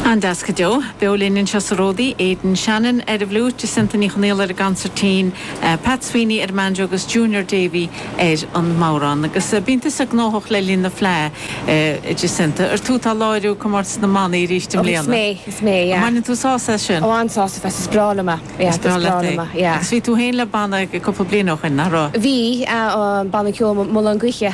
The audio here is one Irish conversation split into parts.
An-deas go deo. Beo linn anseo sa Ródaí, Aidan Shannon ar an bhfliúit, Jacinta Ní Chonaola ar an gcansairtín, Pat Sweeney ar an mbanjo agus Junior Davey ar an mbodhrán. Agus bíonn tusa gnóthach le linn na Fleá, a Jacinta. Ar tú atá ag láiriú Comórtas na mBannaí arís i Oh, is mbliana? mé, is mé, An yeah. mbaineann tú sásamh as sin? Oh, an-sásamh as, is breá liom é, yeah, Is breá is breá liom é. liom é, yeah. Agus bhí tú féin le banna cupla bliain ó shoin, nach raibh? Bhí, yeah, an banna ceoil Mullán Gaoithe.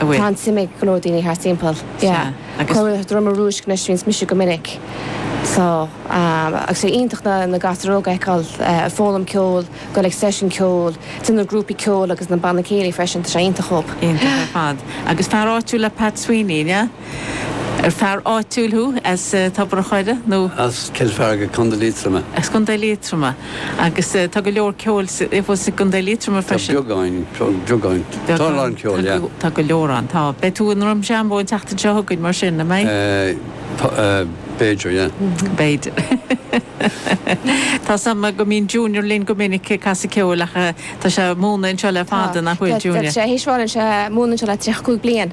a bhfuil. Tá an-suim ag go leor daoine thart timpeall. Sea, agus. Cora Droma Rúisc ansin is mise go minic. So, agus sé iontach na na gasúir óga a fheiceáil ag foghlaim ceoil, dul ag seisiúin ceoil, dul na grúpaí ceoil agus na banna céilí freisin, tá sé iontach chomh. Iontach ar fad. Agus fear áitiúil é Pat Sweeney, an ea? Ar fear áitiúil thú as Tobar a' Choire nó. as Cill Fhearga, Contae Liatroma? As Contae Liatroma. Agus tá go leor ceoil i gContae Liatroma freisin. Tá beagán, beagán. Tá a lán ceoil, yeah. Tá go leor ann, tá. Beidh tú i nDroim Seanbhó an tseachtain seo chugainn mar sin, an mbeidh? B'fhéidir, yeah. B'fhéidir. Tá a fhios agam go mbíonn Junior linn go minic ag casadh ceoil ach tá sé ag múineadh anseo le fada, nach bhfuil, Junior? Tá sé thíos fáil anseo, múineann sé le 35 bliain.